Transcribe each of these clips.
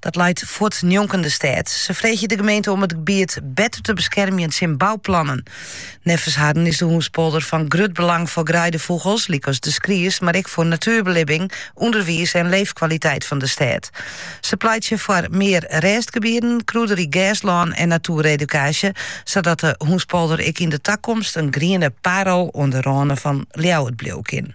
Dat leit fuort njonken de stêd. Se freegje de gemeente om it gebiet better te beskermjen tsjin bouplannen. Neffens harren is de Hounspolder fan grut belang foar greidefûgels, lykas de skries, mar ek foar natuerbelibbing, ûnderwiis en leefkwaliteit fan de stêd. Se pleitsje foar mear rêstgebieden, krûderyk gerslân en natueredukaasje, sadat de hûnspolder ek yn de takomst in griene parel oan de râne fan Ljouwert bliuwe kin.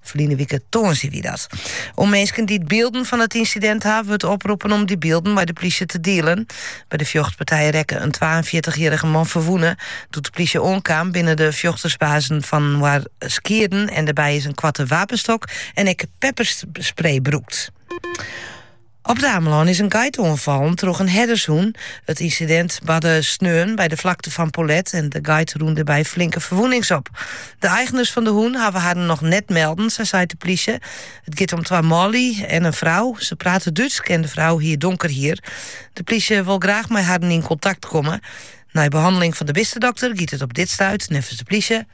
Ferline wike tongersdei wie dat. Minsken dy't bylden fan it ynsidint ha, wurdt oproppen om dy bylden mei de plysje te dielen. By de fjochtpartij rekke in twaenfjirtichjierrige man ferwûne. Doe't de plysje oankaam binne de fjochtersbazen fan inoar skieden en dêrby is in koarte wapenstok en ek pepperspray brûkt. Op It Amelân is in geit oanfallen troch in herdershûn. It ynsidint barde sneon by de Vlakte van Polet en de geit rûn dêr by flinke ferwûnings op. De eigners fan de hûn hawwe harren noch net melden, sa seit de plysje. It giet om twa manlju en in frou. Se prate Dútsk en de frou hie donker hier. De plysje wol graach mei harren yn kontakt komme. Nei behanneling fan de bistedokter giet it op dit stuit, neffens de plysje,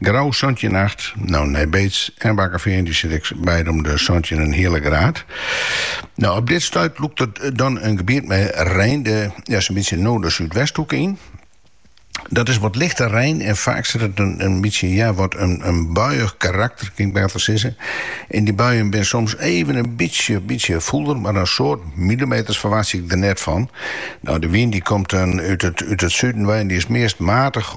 Grou santjin acht, no Nij Beets en Bakkefean dy sitte ek beide om de santjin hiele graad. No, op dit stuit lûkt it dan in gebiet mei rein de ja, zo'n bytsje no de Súdwesthoeke yn. Dat is wat lichte rein en faak sit der in, in bytsje ja, wat in, in buiich karakter, kin ik better sizze. En dy buien binne soms even in bytsje, bytsje fûlder, mar in soad millimeters ferwachtsje ik der net fan. No, de wyn dy komt dan út it, út it suden wei en dy is meast matich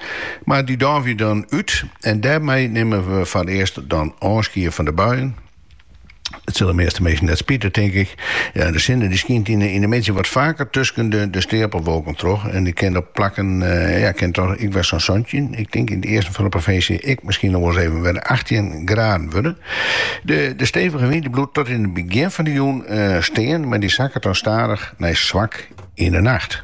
Mar dy doavje dan út en dêrmei nimme we foar it earst dan ôfskie fan de buien. It sil de measte minsken net spite, tink ik. Ja, de sinne dy skynt yn de middei wat faker tusken de steapelwolken troch en kin op plakken ja, kin toch ek wer sa'n santjin, ik tink yn it easten fan de provinsje miskien noch wolris even wer achttjin graden wurde. De de stevige wyn dy bliuwt tot yn it begjin fan de jûn stean, mar dy sakket dan stadich nei swak yn de nacht.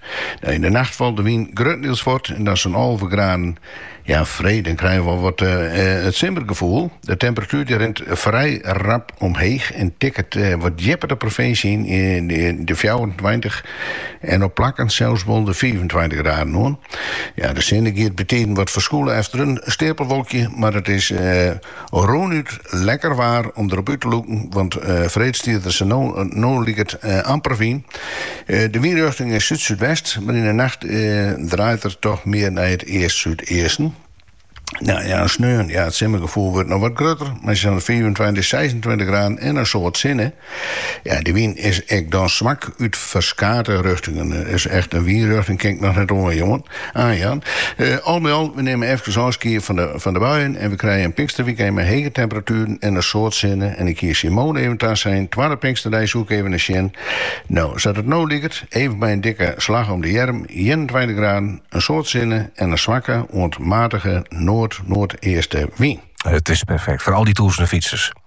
No, yn de nacht falt de wyn gruttendiels fuort en dan is it sa'n alve graden. Ja, freed, dan krije we wol wat it simmergefoel. De temperatuer dy rint frij rap omheech en tikket wat djipper de provinsje yn, de fjouwerentweintich en op plakken sels wol de fiifentweintich graden oan. Ja, de sinne giet bytiden wat ferskûle efter in steapelwolkje, mar it is Rûnút lekker waar om derop út te lûken, want freed stiet der sa't no liket amper wyn. De wynrjochting is súd-súdwest, mar yn 'e nacht draait er toch mear nei it east-súdeasten. Sneon, ja, it simmergefoel wurdt noch wat grutter, maksimaal fiifentweintich, seisentweintich graden en in soad sinne. Ja, de wyn is ek dan swak út ferskate rjochtingen. Dus echt in wynrjochting kin ik noch net oanjaan. Oanjaan. Eh, al by al, we nimme efkes ôfskied fan de, fan de buien en we krije in pinksterwikend mei hege temperatueren en in soad sinne. En ik hie Simone even tasein, twadde pinksterdei soe ik even nei sjen. No, sa't it no liket, even by in dikke slach om de earm, ienentweintich graden, in soad sinne en in swakke oant matige noard-noardeaste wyn. It is perfekt foar al dy tûzenen fytsers.